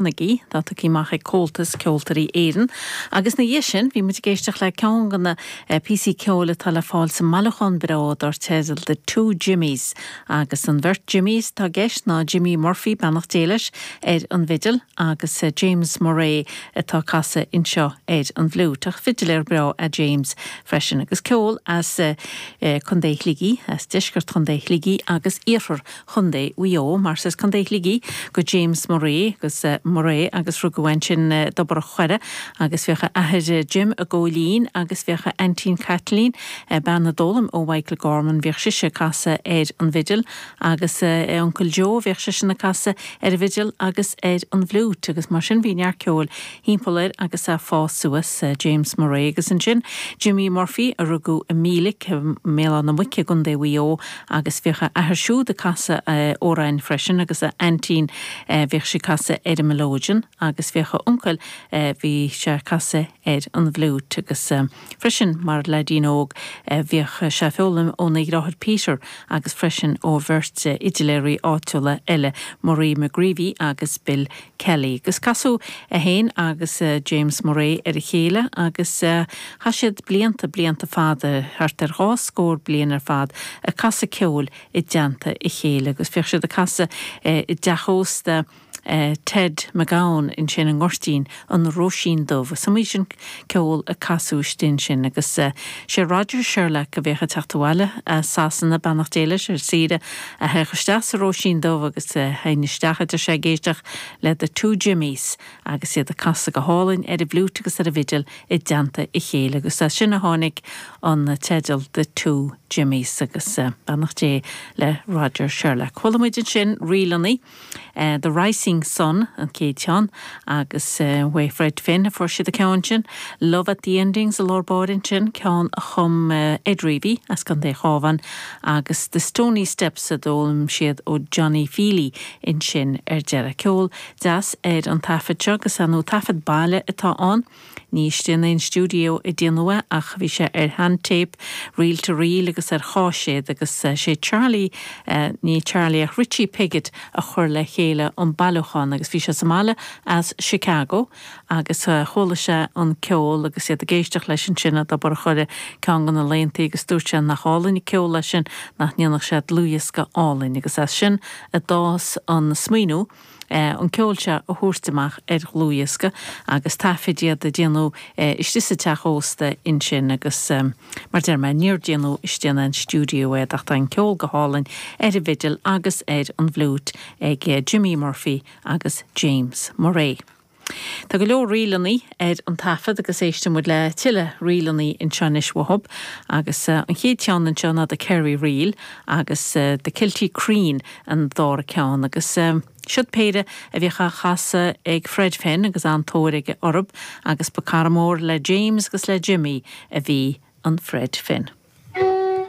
Carnegie, tugtha amach ag Comhaltas Ceoltóirí Éireann, agus ina dhiaidh sin bhí muid ag éisteacht le ceann de na píosaí ceoil atá le fáil sa mbailiúchán bhreá dar teideal The Two Jimmys, agus an bheirt Jimmys atá i gceist ná Jimmy Murphy, beannacht Dé leis, ar an bhfidil, agus James Murray atá ag casadh anseo ar an bhfliúit, ach fidiléir breá é James freisin, agus ceol as Co. Shligigh, as deisceart Co. Shligigh agus iarthar Chondae Mhaigh Eo, mar is as Condae Shligigh do James Murray, James Murray agus rugadh ansin i dTobar Choire agus bhíodh a athair Jim ag gabháil fhoinn agus bhíodh a aintín Caitlín, bean a d'fhoghlaim ó Mhichael Gorman, bhíodh sise ag casadh ar an bhfidil agus a uncail Joe, bhíodh seisean ag casadh ar an bhfidil agus ar an bhfliúit agus mar sin bhí neart ceoil thimpeall air agus é ag fás suas, James Murray agus ansin Jimmy Murphy, a rugadh i Mílic, i mBéal Átha na Muice, i gCo. Mhaigh Eo, agus bhíodh a athair siúd ag casadh amhráin freisin agus a aintín, bhíodh sí ag casadh ar an melodeon, agus bhíodh a uncail, bhí sé ag casadh ar an bhfliúit, agus. Freisin, mar leaidín óg, bhíodh sé ag foghlaim óna dheartháir Peter agus freisin ó bheirt fhidiléirí áitiúla eile, Murray McGreevy agus Bill Kelly. Agus casadh é féin agus James Murray ar a chéile agus chaith siad blianta, blianta fada, thart ar dhá scór bliain ar fad, ag casadh ceoil i dteannta a chéile. Agus bhíodh siad ag casadh i dteach ósta. Ted McGowan ansin i nGoirtín an Róisín Dubh agus is iomaí seisiún ceoil a casadh istigh ansin agus sé Roger Sherlock a bhíodh ag teacht abhaile as Sasana, beannacht Dé leis, ar saoire, a théadh isteach sa Róisín Dubh agus théadh sé isteach ag éisteacht le The Two Jimmies agus iad ag casadh go hálainn ar an bhfliúit agus ar an bhfidil i dteannta a chéile agus as sin a tháinig an teideal The Two Jimmies agus beannacht Dé le Roger Sherlock. Chuala muid ansin ríleanna. The Rising Sun an chéad cheann agus uaidh Fred Finn a fuair siad an ceann sin. Love at the Endings i lár báire ansin, ceann a chum Ed Reavey as Contae an Chabháin agus The Stony Steps a d'fhoghlaim siad ó Johnny Feely ansin ar deireadh. Ceol deas ar an taifead seo, agus sean-taifead baile atá ann. Ní istigh in aon stiúideo a déanadh é ach bhí sé ar shean-téip, reel-to-reel agus ar chaiséad agus sé Charlie, ní Charlie ach Richie Piggott a chuir le chéile an bailiúchán agus bhí sé sa mbaile as Chicago agus chuala sé an ceol agus iad ag éisteacht leis ansin ag bord Richie ceann de na laethantaí agus dúirt sé nach álainn an ceol é sin, nach ndéanfadh sé dlúthdhiosca álainn agus as sin a d'fhás an smaoineamh. an ceol seo a thabhairt amach ar dhlúthdhiosca agus taifeadadh iad a déanamh istigh sa teach ósta ansin agus mar a deir mé, níor déanadh istigh in aon stiúideo é ach tá an ceol go hálainn ar an bhfidil agus ar an bhfliúit ag Jimmy Murphy agus James Murray. Tá go leor ríleannaí ar an taifead agus éistfidh muid le tuilleadh ríleannaí anseo anois uathub agus an chéad cheann anseo ná The Kerry Reel agus The Kilty Creen an dara ceann agus siod péire a bhíodh á chasadh ag Fred Finn agus an-tóir aige orthub agus ba chara mór le James agus le Jimmy a bhí in Fred Finn.